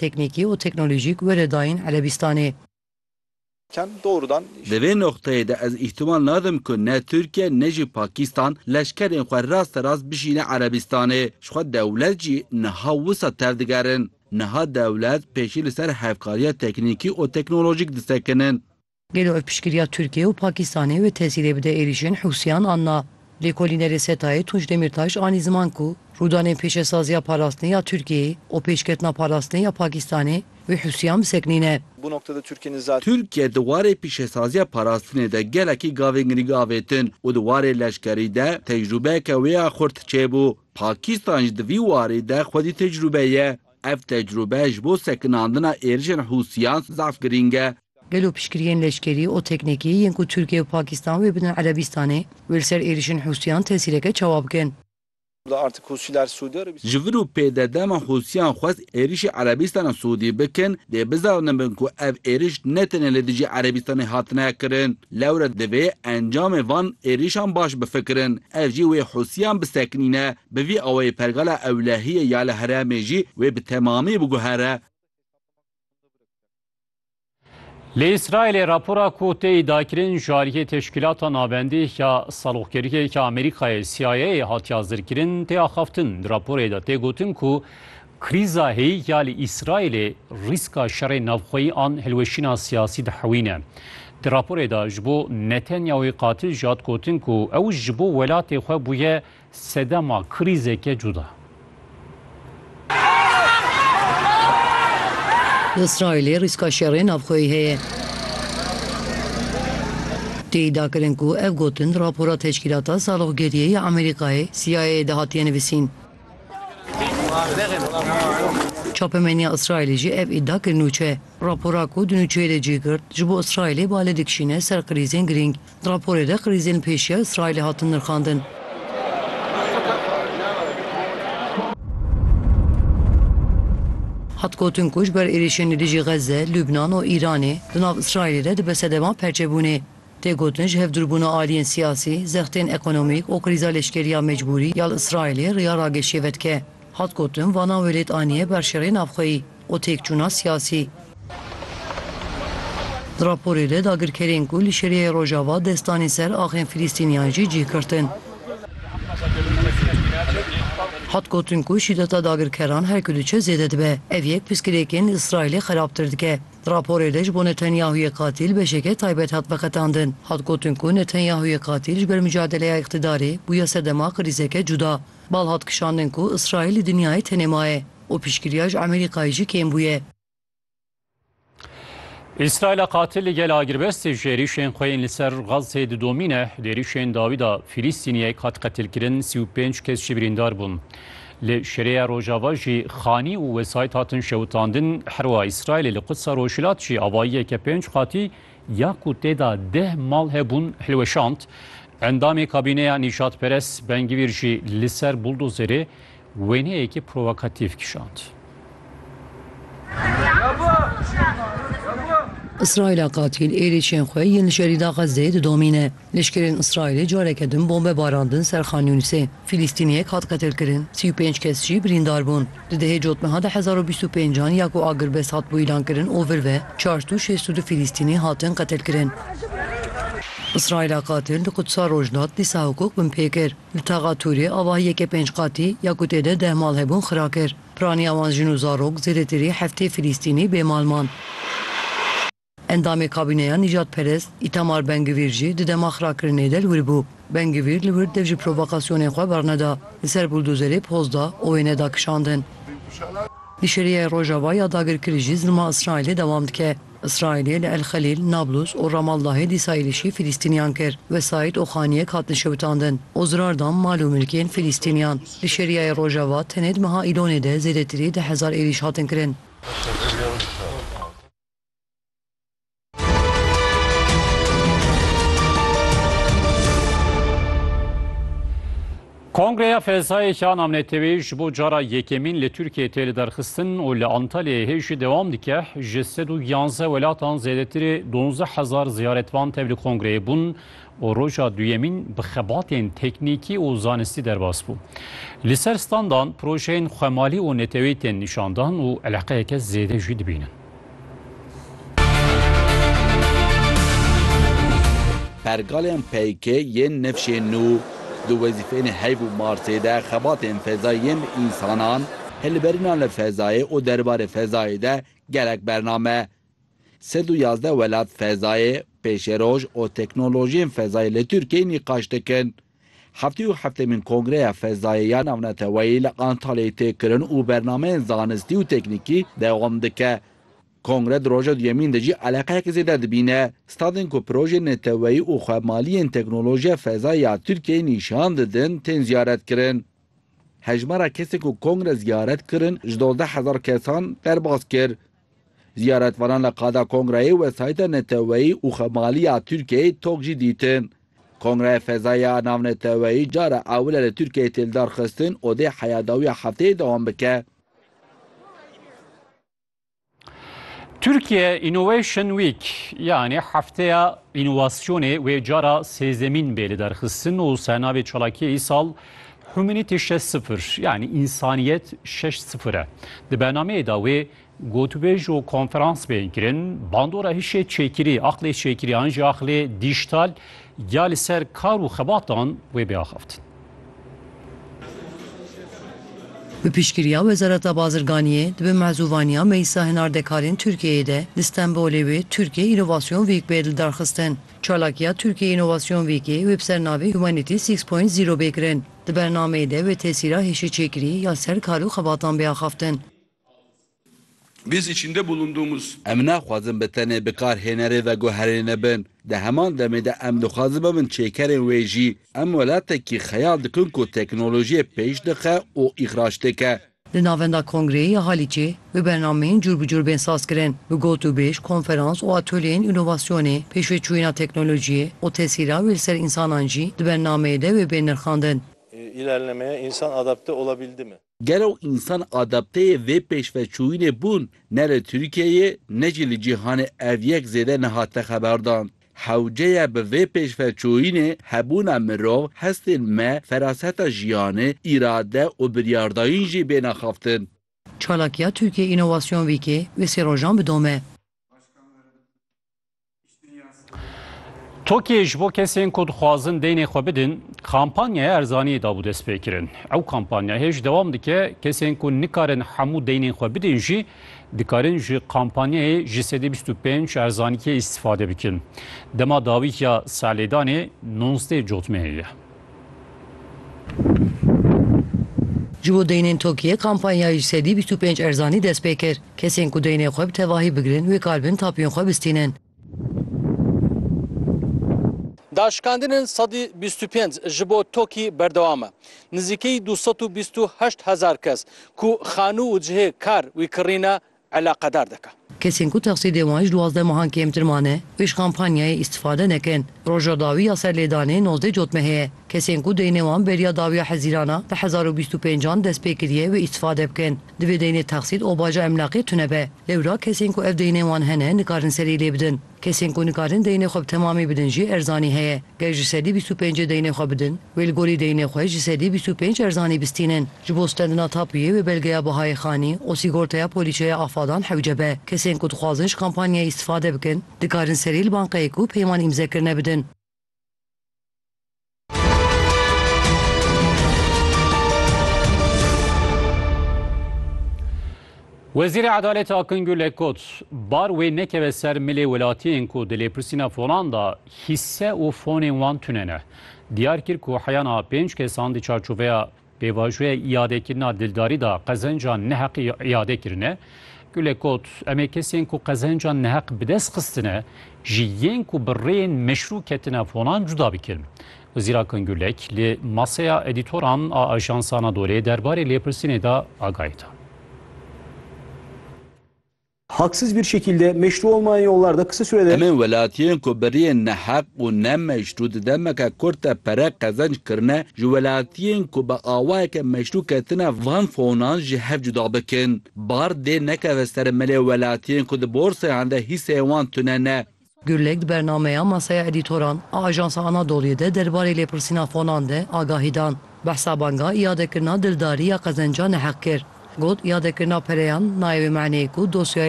Teknîkî û teknolojîk were dayîn Erebîstanê. Di vê noqteyê de ez îhtimal nadim ku ne Tirkiye ne jî Pakîstan leşkerên xwe rasterast bişîne Erebîstanê. Ji xwe dewlet jî niha wisa tevdigerin. Niha dewlet pêşî li ser hevkariya teknîkî û teknolojîk disekinin. Gelo ev piştgiriya Tirkiye û Pakistanê wê tesîrê bide êrîşên Hûsiyan an na? Lêkolînerê SETA'yê Tunç Demîrtaş anî ziman ku rûdanên pêşesaziya parastinê ya Tirkiyeyê û pêşketina parastinê ya Pakistanê wê Hûsiyan bisekinîne. Tirkiye di warê pîşesaziya parastinê de gelekî gavên girîng avêtin û di warê leşkerî de tecrûbeyeke wê ya xurt çêbû. Pakistan jî di vî warî de xwedî tecrûbe ye. Ev tecrûbe ji bo sekinandina êrişên Hûsiyan zaf girîng e. Gelo piştgiriyên leşkerî û teknîkî yên ku Tirkiye û Pakistan wê bidin Erebîstanê, wê li ser êrişên Hûsiyan tesîreke çawa bikin? Ji vir û pê de dema Hûsiyan xwest êrişî Erebîstana Siûdî bikin, dê bizanibin ku ev êriş ne tenê li dijî Erebîstanê hatine kirin. Lewre divê encamê van êrişan baş bifikirin. Ev jî wê Hûsiyan bisekinîne. Bi vî awayî pergala ewlehiyê ya li herêmê jî wê bi temamî biguhere. Li Îsraîlê rapora ku tê îdiakirin ji aliyê Teşkîlata Navendî ya Saloqkeriyê ya Amerîkayê CIA'yê hatiya zirkirin tê axaftin. Di raporê de tê gotin ku krîza hêyî ya li Îsraîlê rîska şerê navxweyî an hilweşîna siyasî dihewîne. Di raporê de ji bo Netanyahûyê qatil jî hat gotin ku ew ji bo welatê xwe bûye Sedema krîzeke cuda. Li Îsraîlê rîska şerê navxweyî heye. Tê îdia kirin ku ev gotin di rapora Teşkîlata Saloqgeriyê ya Amerîkayê, CIA'yê de hatiye nivîsîn. Çapemeniya Îsraîlê jî ev îdia kir nûçe. Rapora ku di nûçeyê de cih girt, ji bo Îsraîlê bale dikişîne ser krîzên girîng. Di raporê de krîzên pêşiya Îsraîlê hatin nirxandin. Hat gotin ku ji ber êrîşên li dijî Xezze, Lubnan û Îranê di nav Îsraîlê de dibe sedema perçebûnê. Tê gotin ji hevdûrbûna aliyên siyasî, zextên ekonomîk û krîza leşkeriya mecbûrî ya li Îsraîlê riya rageşiyê vedike. Hat gotin vana welêt aniye ber şerê navxweyî. û têkçûna siyasî. Di raporê de dagirkerên ku li Şiriyeyê Rojava dest danîn ser axên Filîstîniyan jî cih girtin. Hat gotin ku şîdeta dagirkeran her ku diçe zêde dibe. Ev yek pirsgirêkên li Îsraîlê xerabtir dike. Di raporê de ji bo Netanyahûyê qatîl beşeke taybet hat veqetandin. Hat gotin ku Netanyahûyê qatîl ji ber micadeleya îqtîdarê bûye sedema krîzeke cuda. Bal hat kişandin ku Îsraîl li dinyayê tenê maye. û piştgiriya ji Amerîkayê jî kêm bûye. Îsraîla qatil li gel agirbestê ji êrîşên xwe yên li ser Gazê didomîne. Di êrîşên dawî de Fîlîstîniyek hat qetilkirin, sî û pênc kes jî birîndar bûn. Li Şereya Rojava jî xanî û wesayît hatin şewitandin. Herwiha Îsraîlê li Qudsa Rojhilat jî avayiyeke pênc qatî ya ku tê de deh mal hebûn hilweşand. Endamê kabîneya nîjadperest Ben Gvîr jî li ser buldozerê Wêneyekî provokatîf kişand. Îsraîla qatîl êrîşên xwe yên li şerîda Xezzeyê didomîne. Leşkerên Îsraîlê careke din bombe barandin ser Xan Yûnisê. Fîlîstîniyek hat qetilkirin, sî û pênc kes jî birîndar bûn. Di dehê cotmeha de hezar û bîst û pêncan ya ku agirbest hatibû îlankirin û vir ve çar sed û şêst û du Fîlîstînî hatin qetilkirin. Îsraîla qatil di Qudsa Rojhilat dîsa hukuk binpê kir. Li Taxa Tûrê avahî yeke pênc qatî ya ku tê de deh mal hebûn xira kir. Piraniya wan jin û zarok zêdetirî heftê Filîstînî bê mal man. Endamê kabîneya nîjadperest Îtamar Ben Gvîr jî di dema xirakirinê de li wir bû. Ben Gvîr li wir dev ji provokasyonên xwe berneda. Li ser buldozerê poz da û wê neda kişandin. Di şeriyê Rojava ya dagirkirî jî zilma Îsraîlê dewam dike. Îsraîlê li El Xelîl, Nablus û Ramaldahê dîsa êrîşî Fîlîstîniyan kir. Wesayît û xaniyek hatin şewitandin û zirar dan mal û milkên Fîlîstîniyan. Li Şerîayê Rojava tenê di meha Îlonê de zêdetirî di hezar êrîş hatin kirin. Kongreya Fezayê Şan Amnetewê ji bo cara yekemîn li Tirkiyeyê tê lidarxistin û li Antalyayê hê jî dewam dike. Ji sed û yanzdeh welatan zêdetirê duwazdeh hezar ziyaretvan tev li kongreyê bûn û roja duyemîn bi xebatên teknîkî û zanistî derbas bû. Li ser standan projeyên xwemalî û neteweyî tên nîşandan û eleqeyeke zêde jî dibînin. Pergalên PYK yên nifşên nû di wezîfeyên heyv û Marsê de xebatên fezayî yên bi însanan, hilberînan li fezayê û derbarê fezayê de gelek bername. Sed û yazdeh welat fezayê, pêşeroj û teknolojiyên fezayê li Tirkiyeyê nîqaş dikin. Heftê û heftêmîn Kongreya Fezayê ya Navneteweyî li Antalyayê tê kirin û bernameyên zanistî û teknîkî dewam dike. Kongre di roja duyemîn de jî eleqeyek zêde dibîne. Stadên ku projeyên neteweyî û xwemaliyên teknolojiya fezayê ya Tirkiyeyê nîşan didin tên ziyaretkirin. Hejmara kesên ku Kongre ziyaret kirin ji dozdeh hezar kesan derbas kir. Ziyaretvanan li qada kongreyê wesayîta neteweyî û xemaliya Tirkiyeyê tok jî dîtin. Kongreyê Fezaya Navneteweyî cara ewil e li Tirkiyeyê tê lidarxistin û dê heya dawiya hefteyê dewam bike. Türkiye Innovation Week yanî Hefteya Înovasyonê wê cara sêzdemîn bê lidarxistin û sernavê çalakiyê îsal Humanity şeş sifir yanî însaniyet şeş sifir e. Di bernameyê de wê gotûbêj û konferans bên kirin, bandora hişê çêkirî, aqlê çêkirî an jî aqlê dîjtal ya li ser kar û xebatan wê bê axaftin. Bi piştgiriya Wezareta Bazirganiyê di bin mezûvaniya Meclisa Hinardekarên Tirkiyeyê de li Stenbolê wê Tirkiyê Înovasyon Wîk bê lidarxistin. Çalakiya Tirkiye Înovasyon Vîkê wê bi ser navê Humanity Six Point Zero bê kirin. Di bernameyê de wê tesîra hêşeçêkirî ya ser kar û xebatan bê axaftin. Biz içinde bulunduğumuz. Em naxwazin bi tenê bikarhênerê veguherîne bin. Di heman demê de em dixwazin bibin çêkerên wê jî. Em welatekî xeyal dikin ku teknolojiyê pêş dixe û îxraç dike. Di navenda Kongreyê ya Halîçê bi bernameyên cûr bi cûr bên sazkirin, bi got û bêj, konferans û atolyeyên înovasyonê, pêşveçûyîna teknolojiyê û tesîra wê li ser însanan jî di bernameyê de wê bên nirxandin. Îlerlemeye însan adapte olabildi mi? Gelo însan adapteyê vê pêşveçûyînê bûn? Ne li Tirkiyeyê ne jî li cîhanê ev yek zêde nehate xeberdan. Hewceya bi vê pêşveçûyînê hebûna mirov, hestên me, feraseta jiyanê, îrade û biryardayîn jî bên axaftin. Çalakiya Türkiye Inovasyon Weekê wê sê rojan bi dom e. Tokiyê ji bo kesên ku dixwazin deynê xwe bidin, kampanyaya erzaniyê dabû destpêkirin. Ew kampanyayê ji dewam dike, kesên ku nikarin hemû deynên xwe bidin jî Dikarin ji kampanyayê ji sedî bîst û pênc erzanîkê îstîfade bikin. Dema dawî ya serlêdanê nonzdeh cotmeyê ye. Ji bo deynên TOKİ'yê kampanya ji sedî bîst û pênc erzanî dest pê kir. Kesên ku deynê xwe bi tevahî bigirin wê kar bin tapiyên xwe bistînin. Daşikandinên sedî bîst û pênc ji bo Tokî berdewam e. Nizîkî du sed û bîst û heşt hezar kes ku xanû û cihê kar wî kirîne eleqedar dike. Kesên ku texsîdê wan ji duwazdeh mehan kêmtir mane wê ji kampanyayê îstîfade nekin. Roja dawî ya ser lêdanê nozdeh cotme heye. Kesên ku deynê wan beriya dawiya hezîran a di hezar û bîst û pênc an dest pê kiriye wê îstîfade bikin. Divê deynê teqsît û baca emlaqê tune be. Lewra kesên ku ev deynên wan hene nikarin serî lê bidin. Kesên ku nikarin deynê xwe bi temamî bidin jî erzanî heye. Ger ji sedî bîst û pêncê deynê xwe bidin, wê li gorî deynê xwe ji sedî bîst û pênc erzanî bistînin. Ji bo stendina tapûyê wê belgeya bihayê xanî û sîgortaya polîçeya afadan hewce be. Kesên ku dixwazin ji kampanyayê îstîfade bikin, dikarin serî li banqeyê ku peyman îmzekirine bidin. Wezîrê Edaletê Akin Gul e got, bar wê nekeve ser milê welatiyên ku di lêpirsîna fonan de hîsse û fonên wan tune ne. Diyar kir ku heyana pênc kesan di çarçoveya Pêvajoya îadekirina dildarî da qezenca neheq îade kirine. Gule got, Em ê kesên ku qezenca neheq bi dest xistine ji yên ku bi rêyên meşrû ketine fonan cuda bikin. Wezîr Akın Gürlek li Masaya Edîtoran a Ajans Anadolê derbarê lêpirsînê de agahî da. Haksız bir şekilde, meşru olmayan yollarda kısa sürede. Em ên welatiyên ku beriyên neheq û nemeşru di demeke kurt de pere qezenc kirine, ji welatiyên ku bi awayeke meşru ketine van fonan ji hev cuda bikin. Bar dê nekeve ser melê welatiyên ku di borsayan de hîseyên wan tune ne. Gurlek di bernameya Masaya Edîtoran a Ajansa Anadolu'yê de derbarê lêpirsîna fonan de agahî dan. Behsa banga îadekirina dildarî ya qezenca neheq kir. Got îadekirina pereyan nayê wê maneyê ku dosyayê